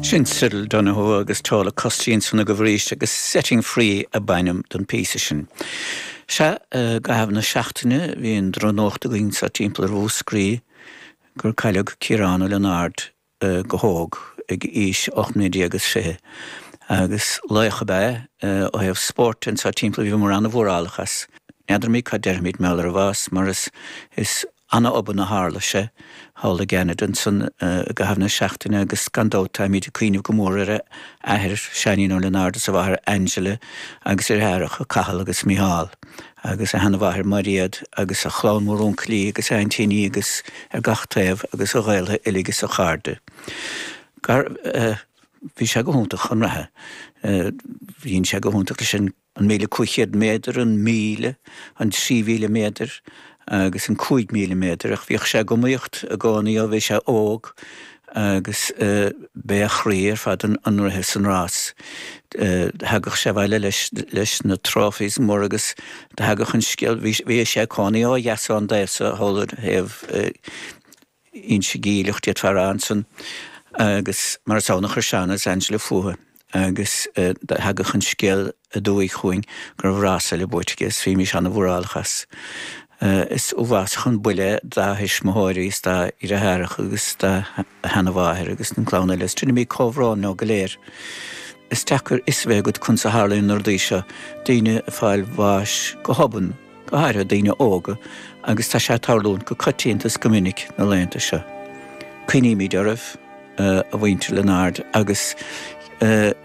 Sin Cyril Donohoe agus Tola Kostjinsson agaibh arís agus Setting Free a b'ainm don phíosa sin. Sea, i gcaitheamh na seachtaine bhí an drochnuacht againn sa timpeall ar Mhúscraí gur cailleadh Ciarán Ó Lionáird go hóg ag aois ocht mbliana déag is fiche agus laoch ab ea é ó thaobh spóirt de sa timpeall agus bhíomar an-mhórálach as. N'fheadraimid cad déarfaimid mar gheall ar a bhás mar is an-obann a tharla sé thall i gCeanada ansan i gcaitheamh na seachtaine agus gan dabht táimíd ag cuimhneamh go mór ar a athair Seanín Ó Lionáird is a mháthair Angela agus ar a dheartháracha Cathal agus Micheál agus a sheana-mháthair Mairéad agus a chlann mhór uncailí agus aintíní agus ar gach taobh agus a ghaoltha uilig is a chairde mar bhí sé go hiontach chun reatha bhí sé go hiontach leis an an 1,500 méadar, an 1,000, an 3,000 méadar agus an 5,000 méadar ach bhíodh sé ag iomaíocht i gcónaí ó bhí sé óg agus b'é a chroí ar fad an rith is an rás. Thagadh sé abhaile leis na trophies mór agus thagadh an scéal, bhí sé ag cónaí ó thuaidh ón dtaobh so thall ar thaobh Inse Geimhleach Tuaim dá fear ansan agus mar is ann a chuir Seán agus Angela fútha agus do theagadh an scéal aduaidh chugainn go raibh rása eile buaite aige is bhímís ana mhórálach as. Is uathbhásach an buille dá thuismitheoirí is dá dhreatháracha agus dá sheana-mháthair agus an clann eile is deinimid comhbhrón leo go léir. Is deacair fhios a bheith agat conas a tharlaíonn na rudaí seo, daoine ag fáil bháis go hobann, go háirithe daoine óga, agus tá sé ag tarlúint go coitianta is go minic na laethanta seo. Cuimhnímid oraibh, a mhuintir Lionáird, agus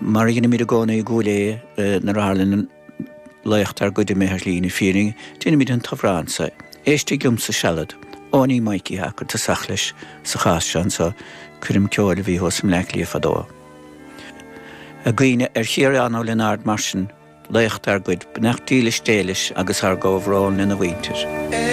mar a dheinimid i gcónaí i gCúil Aodha nuair a tharlaíonn laoch dár gcuid imithe ar shlí na fírinne, déanaimid an t-amhrán so, Éistigh Liomsa Sealad, Eoiní Mhaidhcí a chuir tosach leis sa chás seo anseo, coirm ceoil a bhí acu i mBleá Cliath fadó. Ag cuimhneamh ar Chiarán Ó Lionáird mar sin, laoch dár gcuid beannacht dílis Dé leis agus ár gcomhbhrón lena mhuintir.